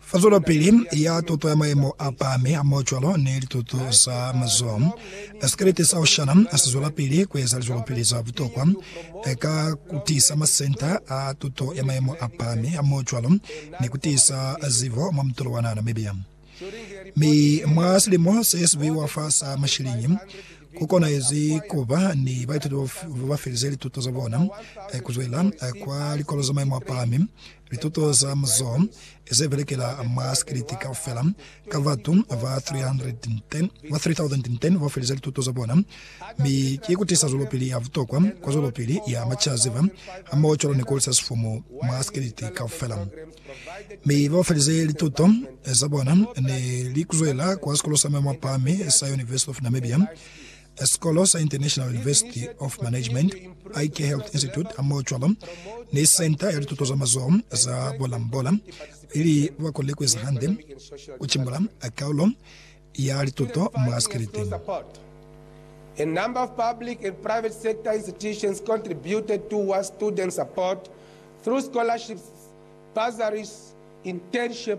Fa zwelopili ya tuto ya maemo a pahami hamohocwalo ni lituto za mazoho, sikelete sa Oshana si zwelapili kueza lizwelopili za butokwa ka kutiisa masenta a tuto ya maemo a pahami hamohocwalo ni kutiisa zibo mwa mutolo wa naha Namibia. Mi mwa silimo se sibuhi wa fa sa mashilinyi, kukonahezi kuba ni baituti babafelize lituto zabona kuzwela kwa likolo za maemo a pahami Lituto za muzoho ze belekela mwa sikiliti kaufela, ka batu ba 3,010 ba felize lituto za bona, mi ki kutisa zwelopili ya butokwa kwa zwelopili ya macaziba hamoho cwalo ni kulisa sifumu mwa sikiliti kaufela. Mi ba felize lituto za bona ne li kuzwela kwa Sikolo sa Maemo a Pahami sa University of Namibia, Escolosa International University of Management, Ike Health Institute hamohocwalo ni Senta ya Lituto za Mazoho za Bolambola, ili bakonile kueza hande kucimbula kaulo ya lituto mwa sikelete. A number of public and private sector institutions contributed towards student support through scholarships, bursaries, internship,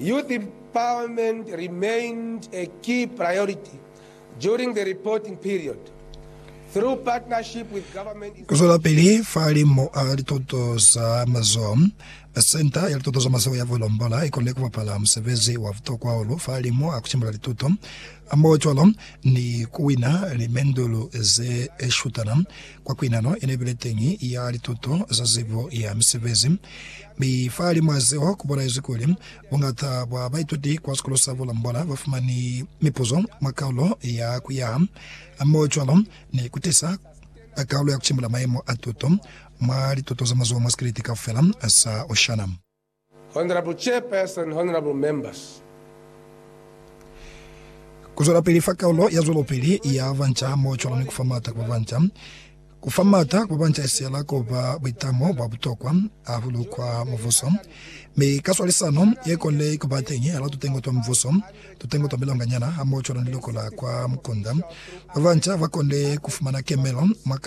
Youth empowerment remained a key priority during the reporting period. Through partnership with government Kuzwelapili fa limu a lituto za mazoho, Senta ya Lituto za Mazoho ya Volombola ikonile kubapala musebezi wa butokwa hahulu fa limu a kucimula lituto hamohocwalo ni kuwina limendulu ze shutana kwa kuinano yeneibile teñi ya lituto za zibo ya misebezi Mi fa limu'a zeo, ku bolaezwi kuli, Buñata bwa baituti kwa Sikolo sa Bulambola ba fumani mipuzo mwa kaulo ya ku yaha hammoho cwalo ni ku tisa kaulo ya ku cimbula mayemo a tuto mwa lituto za mazoho mwa sikeleti kaufela sa Oshana. Honorable Chairperson, Honorable Members, Ku zwelapili fa kaulo ya zwelopili ya banca hammoho cwalo ni ku fa m'ata ku ba banca, Ku fa m'ata ku bancahisela ku ba buitamo bwa butokwa hahulu kwa Mubuso, mi ka swalisano ye kole ku ba teñi hal'a tutengo twa Mubuso, tutengo twa milonganyana hamoho cwalo ni luko la kwa mukunda, ba banca ba kone ku fumana kemelo mwa kalulo